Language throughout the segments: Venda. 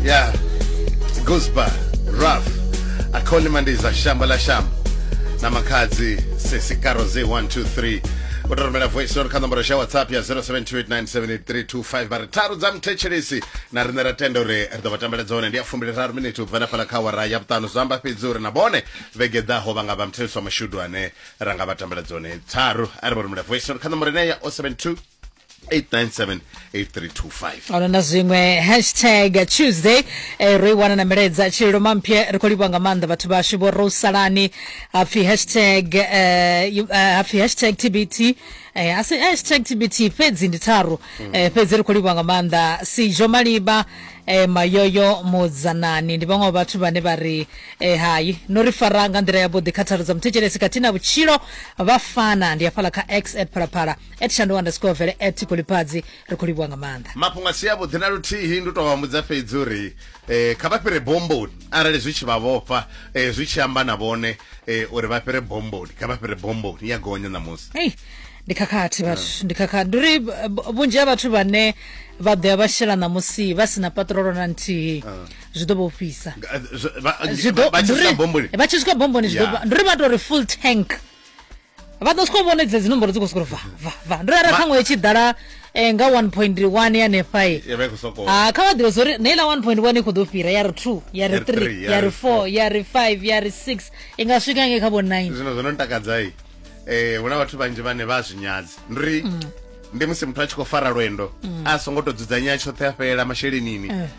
ya gusba raf akhona imandi za shamba la shamba na makhadzi sesikaro ze 123 utoromela voice note kha nomboro xa whatsapp ya 0728978325 vha ri tharu dza muthetshelesi na riṋe ra tenda uri ri ḓo vha tambela dzone ndi ya fumbili-raru miniti u bva na fhala kha wara ya vhuṱanu zwi amba fhedzi uri na vhone vhege ḓaho vha nga vha muthetshelesi wa mashudu ane ra nga vha tambela dzone tharu a ri vha rumela voice note kha nomboro ine ya 072 897 ono na zwiṅwe hashtag tuesday eh, ro i wana na milaedza tshililo mampye ri khou livha nga maanḓa vhathu vhashu vho ro salani hapfi hashtag eh, you- eh, hapfi hashtag tbt eh, asi hashtag tbt fhedzi ndi tharu eh, fhedzi ri khou livha nga maanḓa sijo maliba eh, mayoyo mudzanani ndi vhaṅwe wa vhathu vhane vha ri eh, hayi no ri fara nga nḓila yavhuḓi kha tharo dza muthetshelesi khathihi na vhutshilo vha fana ndi hafhala kha x at phalaphala at shandu underscore vele at kulipadzi ri khou livhuwa nga maanḓa mafhungo a si avhuḓi na luthihi ndi u tou vhambudza fhedzi uri um kha vha fhire bomboni arali zwi tshi vha vhofha um zwi tshi amba na vhone um uri vha fhire bomboni kha vha fhire bomboni ya gonya ṋamusi ei ndi khakhathi vhathu ah. ndi khakhathi ndi uri vhunzhi ha vhathu vhane vha ḓoya vha shela ṋamusi vha si na patrolo na nthihi ah. zwi ḓo vha ofhisa vha tshi swika bomboni zwi ḓo ndi uri vha tou ri full tank vha ḓo soko vhona dze dzi nomboro dzi khou soko va va va ndo rara ṱhaṅwe itshi ḓala eh, nga 1.1 ya nefai eh. ya vha i khou sokou ha kha vha ḓivhe zwo ri na iḽa 1.1 i khou ḓo fhira ya ri 2 ya ri Ya ri 3 three, ya ya ri ri 4 ya ri 5 ya ri 6 i nga swika nge kha vho 9 zwino zwo no ntakadzai eh huna vhathu vhanzhi vhane vha zwi nyadzi ndi ri ndi musi muthu a tshi khou fara lwendo a songo to dzudzanya tshoṱhe a fhelela mashelenini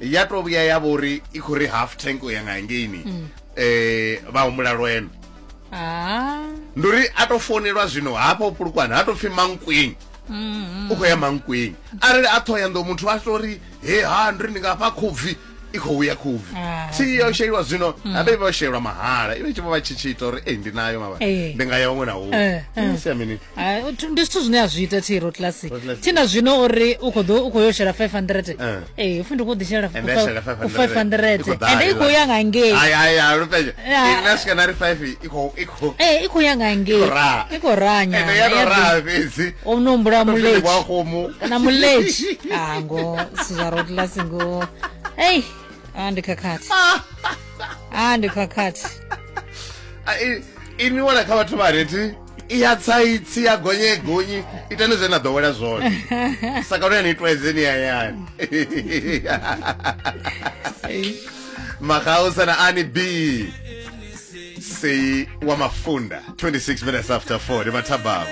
ya to vhuya ya vhori i khou ri half tank u ya nga ngeini um vha humbula lwendo ah. ndi uri a to founelwa zwino hafha u pulukwana ha to pfhi mankweng mm-hmm. u khou ya mankweng arali a thoya ndo muthu a to ri he ha ndi ri ndi nga fha khubvi i khou ya khubvi ah. thi ya u sheliwa zwino mm. habe vha shelwa mahala iwe tshi vha tshi tshi ita uri ei ndi nayo mavha eh. ndi nga ya huṅwe na huṅwe eh, eh. sia mini ndi zwithu zwine a zwi ita thi ro classic thi na zwino uri u khou ḓo u khou yo shela 500 eh. ee upfi ndi khou ḓi shela 500 ende i khou ya nga ngei ee i khou ya nga ngei i khou ranya o no humbula muletshi kana muletshi a ngo si zwa ro classic ngo ei a ndi khakhathi a ndi khakhathi inwi wala kha vhathu vha reti i ya tsaitsi ya gonye gonyi itani zwe na ḓowela zwone sakano ya ni itwa edzeni hayani magausa na ani b sei wa mafunda 26 minutes after 4 ndi mathabama